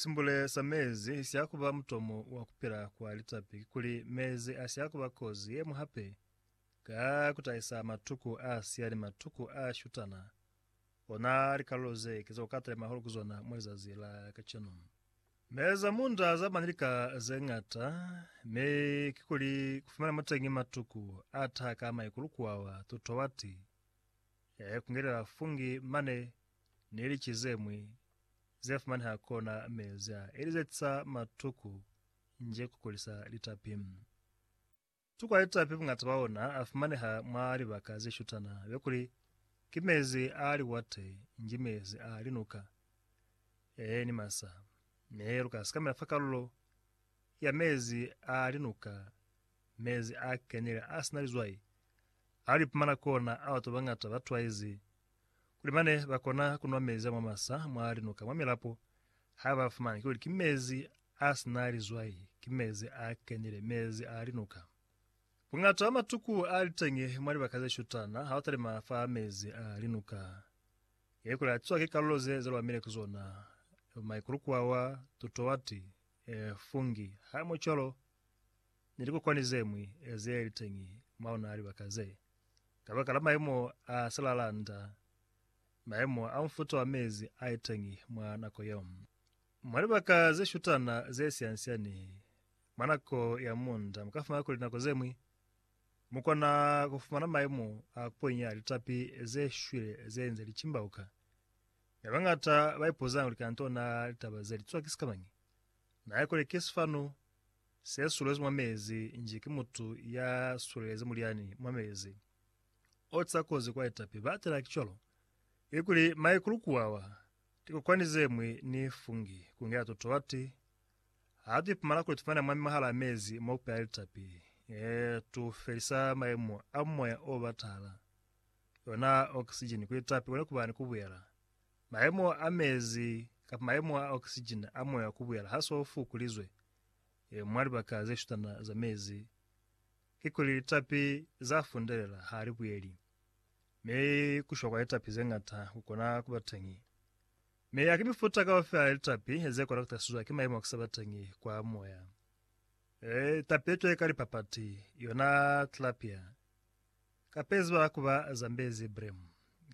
Simbule sa mezi si ya ku ba mutomo wa ku pila kwa litapi kikuli mezi a si ya ku ba kozi ye ñwi hape ka ku tahisa matuku a siya ni matuku a shutana, ona likalulo ze ki za ku katelema hahulu ku zona mwa lizazi la kacenu. Mezi a munda a za ba ni lika ze ñata, mi kikuli ku fumana muteñi matuku a taha ka maikulu kuawa tutowati, ya ikungelela fungi mane ni lici ze ñwi ze fumaneha kona mezi a elizetisa matuku nje ku kulisa litapi. Matuku a litapi bungata bwa ona a fumaneha mwa libaka ze shutana be kuli ki mezi a liwate nji mezi a linuka, ee, ni masa. Mi lu ka sikamela fa kalulo ya mezi a linuka, mezi a kenile a si na lizwai a lu ipumana kona ao batu ba bangata ba twaizi kuli mane ba kona ku nwa mezi a mwa masa mwa linuka mwa milapo ha ba fumani kuli ki mezi a si na lizwai, ki mezi a kenile, mezi a linuka. Buñata bwa matuku a li teñi mwa libaka ze shutana ha u talima fa mezi a linuka. Ye kuli a tizwa ki kalulo ze ze lwamile ki zona, maikulukwawa, tutuwati, fungi, haimo cwalo ni likukwani ze ñwi ze li teñi mwa ona libaka ze. Kabakala mayemo a silalanda, mayemo a mufuta wa mezi a iteñi mwa nako yeo. Mwa libaka ze shutana ze siansiani, mwa nako ya munda mukafumana kuli nako zemwi mukona kufumana mayemo a kuponya litapi ze shwile ze nze licimbauka. Mi bañata baipuzanga kuli kanto na litaba ze litswa ki sikamañi? Na ikole ki sifanu Se sulezi mwa mezi nji ki mutu ya sulelezi mulyani mwa mezi. O ca kozi kwa etapi ba tela ki cwalo. Ikuli maikulu kuwawa, tikokwani ze mwi ni fungi, kungela totolati, ha tu ipumana kuli tufumana mwami mwahala mezi mo kupela litapi, ee, tu felisa maimo a moya o batahala, yona oxygen ku litapi kone kuba ni kubuyela. Maimo a mezi kapa maimo a oxygen a moya kubuyela ha so fukulizwe. mwa libaka ze shutana za mezi kikuli litapi za fundelela ha li buyeli, mi ku shwa kwa litapi ze ñata ku kona ku ba teñi. Mi haki mifuta kaufela ya litapi ze kona ku tasizwa ki mayemo a ku sa ba teñi kwa moya. Litapi ye cwale ka lipapati, yona tilapia, kapa ye ziba ku ba Zambezi bream,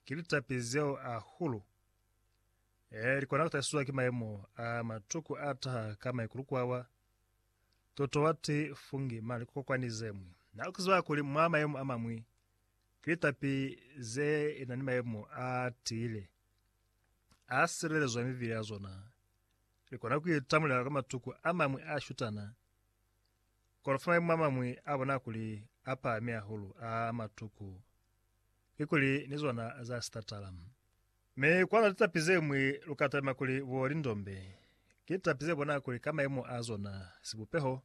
ki litapi zeo ahulu Ee, li kona ku tahisizwa ki mayemo a matuku a taha ka maikulu kwawa. Toto wa ti, Fungi, mane ku kokwani ze ñwi. Na lu ziba kuli mwa mayemo a mañwi, ki litapi ze na ni mayemo a tiile, a silelezwa mivili ya zona, li kona ku itamulela kwa matuku a mañwi a shutana, kono fa mayemo a mañwi a bona kuli a pahami hahulu a matuku, kikuli ni zona za sitatala. Mi kwa na litapi zeñwi lu ka talima kuli bo lindombe, ki litapi ze bona kuli ka mayemo a zona, sibupeho,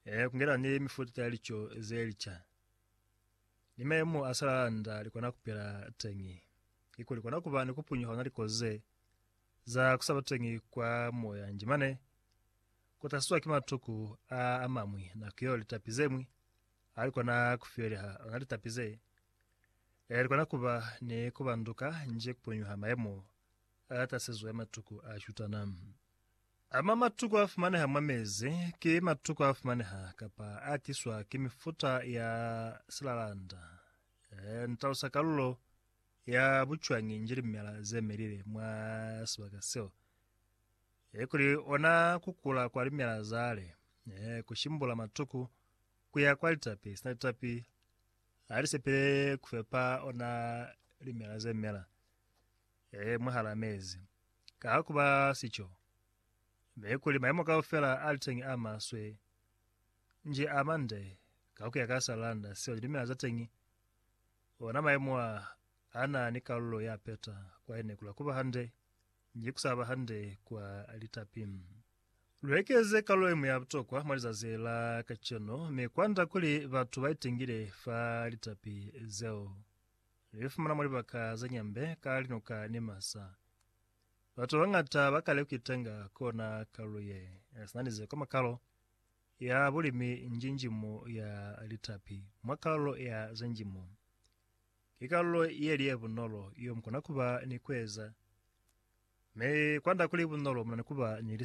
ee, ku ngena ni mifuta ya lico ze lica, ni mayemo a salalanda li kona ku pila teñi, kikuli kona ku ba ni ku punyuha ona likozi ze za ku sa ba teñi kwa moya nji mane, ku tahliswa ki matuku a a mañwi, nako yeo litapi zeñwi ha li kona ku fiyeliha ona litapi ze. Likona kuba ni kubanduka nji kupunyuha mayemo a tasizo ya matuku a shutana. Ama matuku afumaneha mwa mezi ki matuku afumaneha kapa atiswa ki mifuta ya silalanda. Ntalusa kalulo ya bucwañi nji limela zemelile mwa sibaka seo. Kuli ona kukula kwa limela zale, kushimbula matuku kuya kwa litapi sina litapi, Ha li sepelele ku fepa ona limela ze mela ee mwahal'a mezi. Ka ha ku ba sico, mi kuli mayemo kaufela a li teñi a maswe, nji a mande ka ku ya ka s'a landa seo limela za teñi, ona mayemo a a na ni kalulo ya peta kwa ene kula ku ba hande nji ku sa ba hande kwa litapi. Lu ekeze kalulo yeñwi ya butokwa mwa lizazi la kacenu mi kwanda kuli batu ba itengile fa litapi zeo. Lu ifumana mwa libaka za nyambe ka linuka ni masa. Batu babañata ba kale kuitenga ku ona kalulo ye sina ni zeko mwa kalo ya bulimi njinjimu ya litapi. Mwa kalulo ya za njimo, ki kalulo yeli ye bunolo yo mukona kuba ni kueza, mi kwanda kuli bunolo munani kuba ni lisaka.